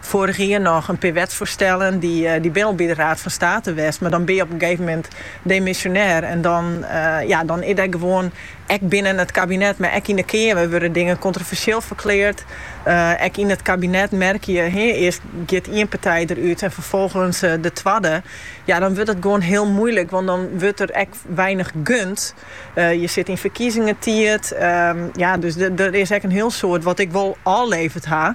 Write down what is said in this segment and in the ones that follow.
Foarich jier noch in pear wetsfoarstellen, dy binne al by de Raad fan State west, mar dan bin je op in gegeven moment demisjonêr en dan ja, dan is der gewoan, ek binnen it kabinet, mar ek yn de Keamer wurde dingen kontroversjeel ferkleard. Ek yn it kabinet merkje je, hee, earst giet ien partij derút en ferfolgens de twadde. Ja, dan wurdt it gewoan hiel moeilik, want dan wurdt der ek weinich gund. Je sit yn ferkiezingstiid, ja, dus der is ek in hiel soad wat ik wol ôfleverd ha,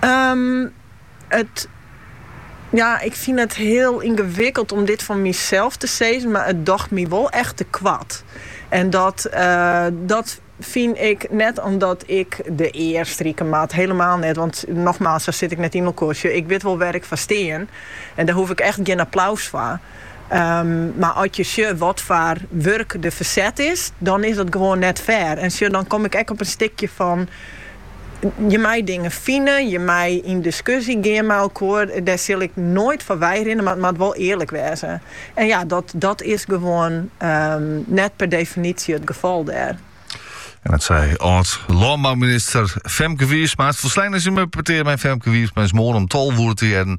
Ehm, it, ja, ik fyn it heel yngewikkeld om dit fan mysels te sizzen, mar it docht my wol echt te koart. En dat, eh, dat fyn ik net omdat ik de ear strike moat, helemaal net, want nogmaals, sa sit ik net yn elkoar. Sjoch, ik wit wol wêr ik foar stean en dêr hoef ik echt gjin applaus foar. Ehm, mar as je sjoch wat foar wurk der ferset is, dan is dat gewoan net fair. En sjoch, dan kom ik ek op in stikje fan, Je mei dingen fine, je mei yn diskusje gean mei elkoar. Dêr sil ik noait foar weirinne, mar it moat wol earlik wêze. En ja, dat is gewoan net per definitie it gefal dêr. En dat sei âld-lânbouminister Femke Wiersma. It folsleine simmerpetear mei Femke Wiersma is moarn om tolve oere te hearren